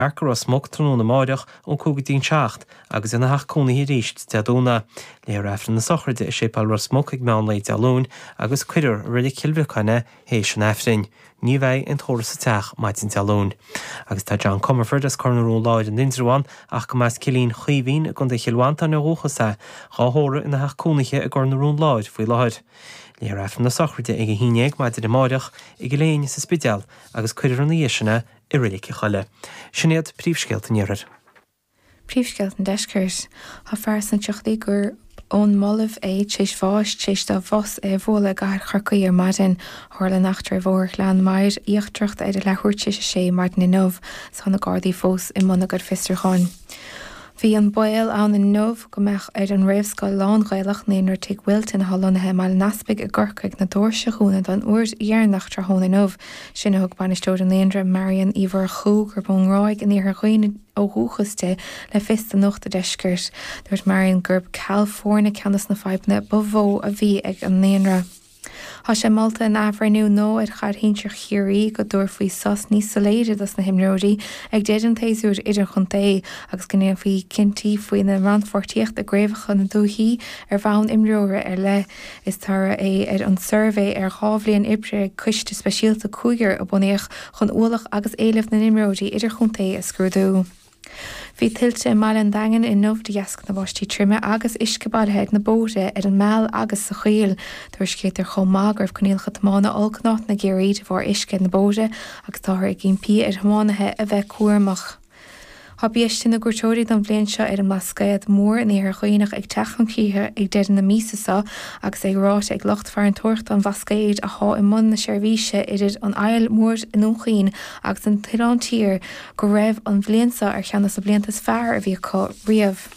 Mark Ros Muc tráthnóna amáireach ón cúig go dtí an seacht agus ina theach cónaithe arís Dé Domhnaigh. Léifear Aifreann na sochraide i Séipéal Ros Muc ag meán lae Dé Luain agus cuirfear i Reilig Chill Bhriocáin é théis an Aifrinn. Ní bheidh aon tórramh sa teach maidin Dé Luain. Agus tá John Comerford as Cor na Rón Láir in Indreabhán ach go mba as Cillín Chaoimhín i gContae Chill Mhantáin ó dhúchas é, dhá thórramh ina theach cónaithe i gCor na Rón Láir faoi láthair. Léifear Aifreann na sochraide ag a haon dhéag maidin amáireach i gCill Éinne sa Spidéal agus cuirfear ina dhiaidh sin é i Reilig an Choilligh. Sin iad príomhscéalta an Iarthair. Príomhscéalta an Deiscirt. Tá fear sna tríochaidí gurb ón mBolaiv é tréis bháis, tréis do bhus é a bhualadh i gcathair Chorcaí ar maidin. Tharla an eachtra ar Bhóthar Ghleann Maghair Íochtarach ar a leathuair tréis a sé maidin inniu, is tá na Gardaí fós i mbun a gcuid fiosrúcháin. Bhí an baol ann inniu go mbeadh ar an réamhscoil lán-Ghaelach Naíonra Tigh Wilton, atá lonnaithe i mBaile an Easpaig i gCorcaigh, na doirse a dhúnadh don uair dheireanach tráthnóna inniu. Sin a thug bainisteoir an naíonra, Marian Uí Mhurchú, gurb ón nGráig in iarthar Dhuibhne ó dhúchas di, le fios do Nuacht a' Deiscirt. Dúirt Marian gurb ceal foirne ceann de na fadhbanna ba mhó a bhí ag an naíonra. Tá sé molta in athbhreithniú nua ar chaid shinsir Chiarraí go dtabharfaí sos níos soiléire dos na himreoirí ag deireadh an tséasúir idirchontae agus go ndéanfaí cinntí faoina rannpháirtíocht i gcraobhacha na ndúichí ar bhonn imreora ar leith. Is toradh é ar an suirbhé ar dhá bhliain oibre ag coiste speisialta cúigear a bunaíodh chun ualach agus éileamh na n-imreoirí idirchontae a scrúdú. Bhí tuilte i mbaile an Daingin inniu de dheasca na báistí troime agus uisce bailithe ar na bóithre, ar an Meal agus sa Choill. Tuairiscítear chomh maith go raibh coinníollacha tiomána olc in áiteanna i gCiarraí de bharr uisce ar na bóithre agus táthar ag impí ar thiománaithe a bheith cúramach. Tá biaiste na gcuairteoirí don bhliain seo ar an mBlascaod Mór in Iarthar Dhuibhneach ag teacht chun críche ag deireadh na míosa seo agus é ráite ag lucht farantóireachta an Bhlascaoid atá i mbun na seirbhíse idir an Fhaill Mhór i nDún Chaoin agus an tOileán Tiar go raibh an bhliain seo ar cheann de na blianta is fearr a bhí acu riamh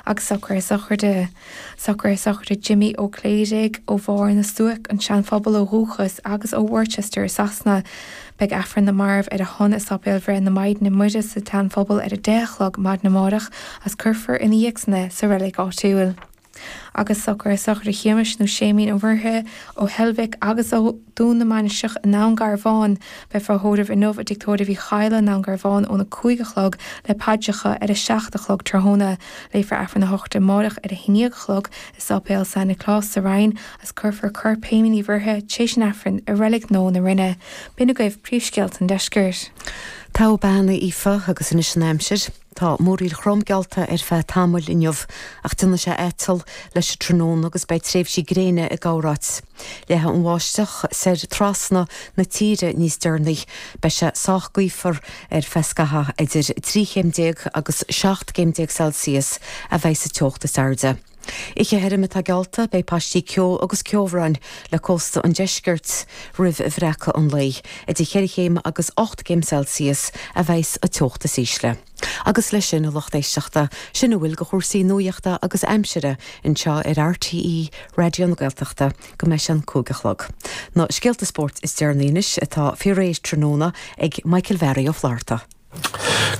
agus socruithe sochraide, socruithe sochraide Jimí Ó Cléirigh, ó Bharr na Stuac, an Seanphobal ó dhúchas, agus ó Worcester i Sasana. Beidh Aifreann na Marbh ar a shon i Sáipéal Bhreith na Maighdine Muire sa tSeanphobal ar a deich a chlog maidin amárach agus cuirfear ina dhiaidh san é sa reilig áitiúil. agus socruithe sochraide Shéamais nó Séimín Uí Mhuirithe ó Heilbhic agus ó Dhún na Mainistreach i nDún Garbháin, beifear á thórramh inniu i dtigh tórraimh Uí Chadhla i nDún Garbháin óna cúig a chlog le paidreacha ar a seacht a chlog tráthnóna. Léifear Aifreann a shochraide amárach ar a haon dhéag a chlog i Sáipéal San Nioclás sa Rinn agus cuirfear corp Shéimín Uí Mhuirithe tréis an Aifrinn i Reilig Nua na Rinne. B'in agaibh príomhscéalta an deiscirt. Taobh Beanna Aoife agus anois an aimsir. Tá múraíl throm geallta ar feadh tamaill inniu, ach déanfaidh sé aiteall leis an tráthnóna agus beidh tréimhsí gréine i gcorráit. Leathfaidh an bháisteach soir trasna na tíre níos deireanaí. Beidh sé sách gaofar ar feadh scaithimh, idir trí chéim déag agus seacht gcéim déag Celsius a bheidh sa teocht is airde. Oíche thirim atá geallta, beidh paistí ceo agus ceobhráin le cósta an deiscirt roimh bhreacadh an lae. Idir cheithre chéim agus ocht gcéim Celsius a bheas sa teocht is ísle. Agus leis sin a lucht éisteachta, sin a bhfuil de chúrsaí nuaíochta agus aimsire anseo ar RTÉ Raidió na Gaeltachta go mbeidh sé an cúig a chlog. Na scéalta spóirt is deireanaí anois atá faoi réir tráthnóna ag Michael Bharry Ó Flatharta.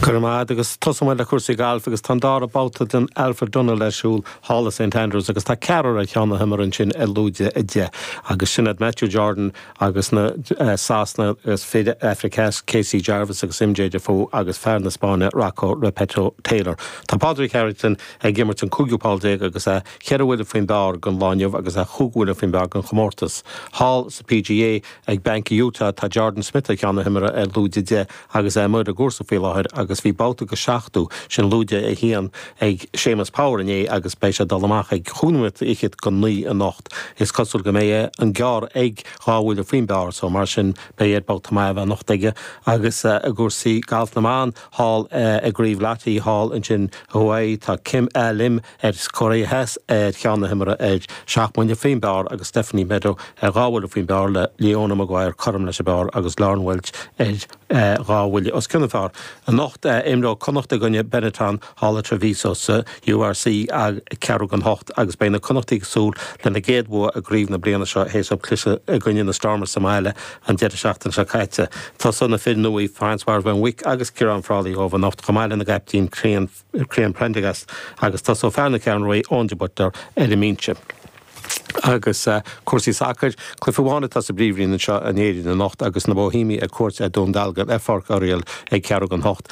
Go raibh maith agat, agus tosóidh muid le cúrsaí gailf agus tá an dara babhta den Alfred Dunhill ar siúl thall i Saint Andrews agus tá ceathrar ar cheann na himeartha ansin ar lúide a deich agus sin iad Matthew Jordan agus na Sasana agus fir Afraic Theas Casey Jarvis agus MJ Daffue agus fear na Spáinne Rocco Repetto Taylor. Tá Pádraig Harrington ag imirt an cúigiú poll déag agus é ceithre bhuille faoin bpar don lá inniu agus é chúig bhuille faoin bpar don chomórtas. Thall sa PGA ag Banc Utah tá Jordan Smith ar cheann na himeartha ar lúide deich agus é amuigh ar an gcúrsa faoi láthair agus bhí babhta de seachtó, sin lúide a haon, ag Séamus Power inné agus beidh sé dul amach ag cúig nóiméad fichead don naoi anocht. Is cosúil go mbeidh an gearr ag dhá bhuille faoin bpar so mar sin beidh air babhta maith a bheith anocht aige agus i gcúrsaí gailf na mban thall i gCraobh Lotte thall ansin i Hawaii tá Kim A Lim as Cóiré Theas, ar cheann na himeartha, ar seacht mbuille faoin bpar agus Stephanie Meadow ar dhá bhuille faoin bpar le Leona Maguire cothrom leis an bpar agus Lauren Walsh ar dhá bhuille os cionn an phar. Anocht, imreoidh Connacht i gcoinne Benetton, thall i Treviso sa URC ag ceathrú don hocht agus beidh na Connachtaigh ag súil lena gcéad bhua i gcraobh na bliana seo théis dóibh cliseadh i gcoinne na Stormers sa mbaile an deireadh seachtaine seo caite. Tosóidh na fir nua, Francois Van Wyk agus Ciarán Frawley dóibh anocht chomh maith lena gcaiptín Cian Prendergast agus tosóidh fear na Ceathrún Rua, Eoin de Buitléar, ar an mbinse. Agus cúrsaí sacair, cluiche amháin atá sa bpríomhroinn anseo in Éirinn anocht agus na Bóihéimigh ar cuairt ar Dhún Dealgan ar Pháirc Oriel ag ceathrú don hocht.